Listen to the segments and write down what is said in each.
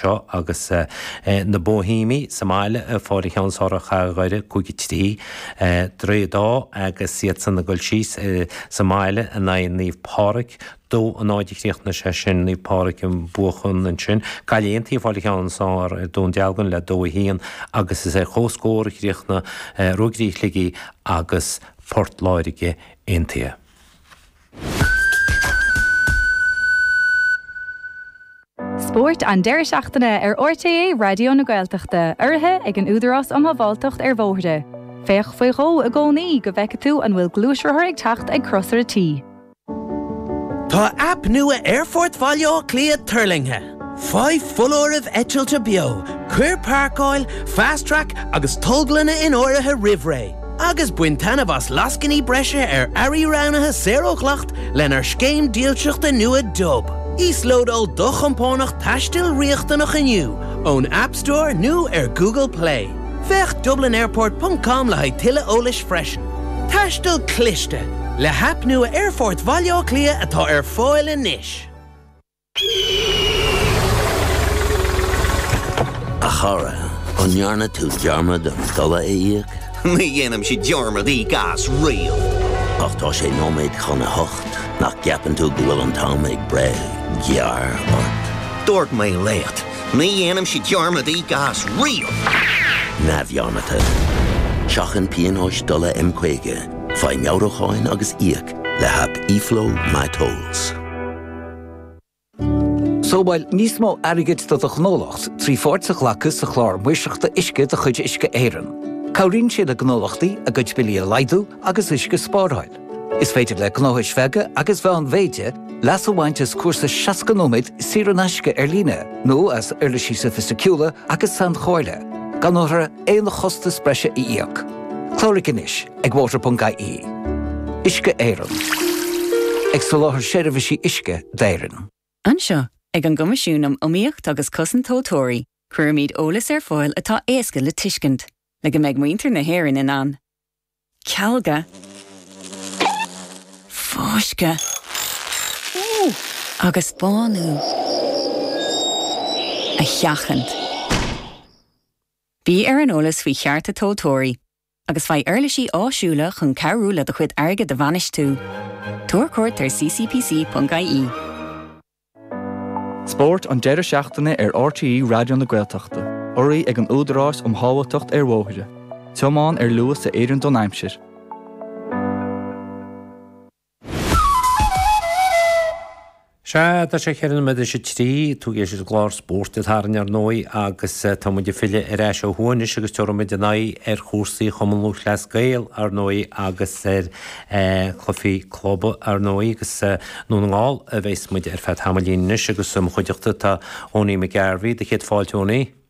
seo agus na Bóihéamaigh sa mbaile fáil an ceann is fearr ar Chathair Dhoire cúig a trí Droichead Átha agus iadsan ag goil síos sa mbaile in aghaidh Naomh Pádraic dó a náid a chríochnaigh sé sin Naomh Pádraic ag buachan ansin Gaillimh Aontaithe fáil an ceann is fearr ar Dhún Dealgan le dó a haon agus is ar chomhscór a chríochnaigh Ruagairí Shligigh agus Port Láirge aon an taobh. Spórt an deireadh seachtaine ar RTÉ Raidió na Gaeltachta, urraithe ag an Údarás um Shábháilteacht ar Bhóithre. Féach faoi dhó i gcónaí go bhfeicfidh tú an bhfuil gluaisrothar ag teacht ag crosaire T. Tá aip nua Aerfort Bhaile Átha Cliath tuirlingthe! Faigh foláireamh eitilte beo, cuir páirceáil, Fast Track, agus tolglanna in áirithe roimh ré, agus bain taitneamh as lascainí breise ar earraí roghnaithe saor ó dhleacht lenár scéim dílseachta nua Dub. Íoslódáil do chompánach taistil riachtanach inniu ón App Store nó ar Google Play. Féach dublinairport ponc com le haghaidh tuilleadh eolais freisin. Taisteal cliste, le haip nua Aerfort Bhaile Átha Cliath atá ar fáil anois. A chara, an ndearna tú dearmad an dola a íoc? Ní dhéanaimse dearmad íoc as riamh. Ach tá sé nóiméad chun a hocht, nach gceapann tú go bhfuil an t-am ag breith gearr ort? Dúirt mé leat, ní dhéanaimse dearmad íoc as riamh! Neamhdhearmadta. Seachain pionóis dola M50, faigh meabhrúcháin agus íoc le haip eFlow My Tolls. Sábháil níos mó airgid do do ghnólacht trí pháirt a ghlacadh sa Chlár Maoirseachta Uisce de chuid Uisce Éireann. Cabhraíonn sé le gnólachtaí a gcuid billí a laghdú agus uisce a spáráil. Is féidir le gnóthais bheaga agus mheánmhéide leas a bhaint as cúrsa 60 nóiméad saor in aisce ar líne nó as uirlisí sofaisticiúla agus sainchomhairle gan a. aon chostas breise a íoc. Cláraigh anois ag water.ie. Uisce Éireann. Ag soláthar seirbhísí uisce d'Éirinn. Anseo, ag an gCoimisiún um Iomaíocht agus Cosaint Tomhaltóirí, cuirimid eolas ar fáil atá éasca le tuiscint, le go mbeidh muintir na hÉireann in ann cealga, fáisceadh agus bánú a sheachaint. Bí ar an eolas faoi chearta tomhaltóirí agus faigh uirlisí áisiúla chun cabhrú le do chuid airgid a bhainistiú. Tabhair cuairt ar ccpc.ie. Spórt an deireadh seachtaine ar RTÉ Raidió na Gaeltachta. Urraithe ag an Údarás um Shábháilteacht ar Bhóithre. Tiomáin ar luas a oireann don aimsir. Sea, tá sé ceithre nóiméad tar éis a trí, tú ag éisteacht leis an gclár Spórt an tSathairn ar ndóigh agus tá muid ag filleadh ar ais ó thuaidh anois agus tabharfaidh muid ár n-aghaidh ar chúrsaí Chumann Lúthchleas Gael ar ndóigh agus ar Cluichí club, ar ndóigh, agus i nDún na nGall a bheas muid ar feadh tamaillín anois agus i mo chuideachta tá Owenie McGarvey. Do chéad fáilte, Owenie.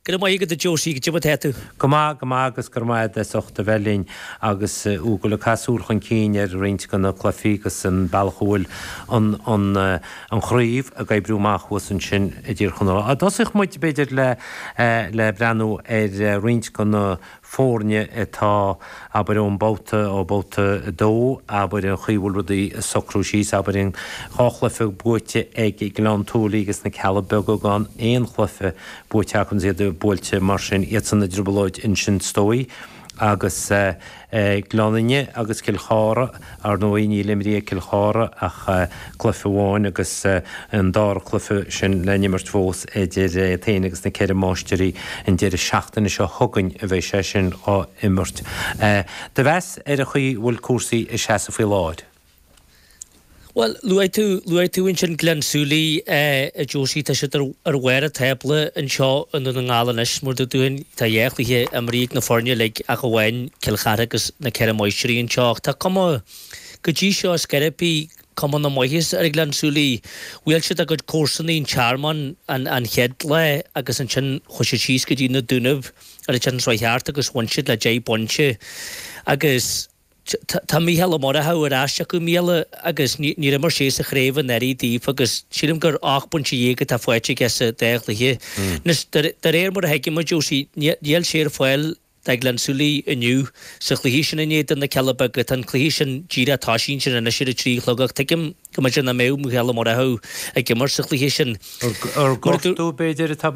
Go raibh maith agat, a Josie. Cad é mar atá tú. Go maith, go maith agus go raibh maith agat as ucht a bheith linn agus thú ag caitheamh súil chun cinn ar roinnt de na cluichí agus an bealach a bhfuil an chraobh ag oibriú amach thuas ansin i dTír Chonaill. Tosóidh muid, b'fhéidir, le breathnú ar roinnt de na foirne atá, abair, ón mbabhta, ó bhabhta a dó, abair, an chaoi a bhfuil rudaí ag socrú síos, abair, an, dhá chluiche buaite ag Gleann tSúilí agus na Cealla Beaga, gan aon chluiche buaite acu agus iad buailte mar sin, iadsan i dtrioblóid ansin, is dóigh, agus eh. Gleann Fhinne agus Cill Chartha. Ar ndóigh níl imrithe ag Cill Chartha ach cluiche amháin agus an dara cluiche sin le n-imirt fós idir iad féin agus na Ceithre Máistrí an deireadh seachtaine seo chugainn a bheidh sé sin á imirt. Do mheas ar an chaoi a bhfuil cúrsaí ag seasamh faoi láthair? Bhuel, luaigh tú ansin Gleann tSúilí, a Josie, tá siad ar bharr an tábla anseo i nDún na nGall anois, mar a dúirt tú Tá dhá chluiche imrithe ag na foirne uilig ach amháin Cill Chartha agus Na Ceithre Máistrí anseo ach tá cuma go dtí seo ar scor ar bith cuma na maitheasa ar Ghleann tSúilí. Bhuail siad a gcuid comharsanaí an Tearmann an chéad lá agus ansin chuaigh siad síos go dtí Na Dúnaibh ar an tSatharn seo thart agus bhain siad le deich bpointe agus Tá Mícheál Ó Murchadha ar ais acu i mbliana agus níor imir sé sa chraobh anuraidh dóibh agus sílim gur ocht bpointe dhéag atá faighte aige sa dá chluiche. Anois, de réir mar a thuigim, a Josie, níl sé ar fáil do Ghleann tSúilí inniu sa chluiche sin in éadan na Cealla Beaga. Tá an cluiche sin díreach ag toiseacht ansin anois ar a trí a chlog ach tuigim go mb'fhéidir nach mbeadh Mícheál Ó Murchadha ag imirt sa chluiche sin. Ar gortú, b'fhéidir, atá baint.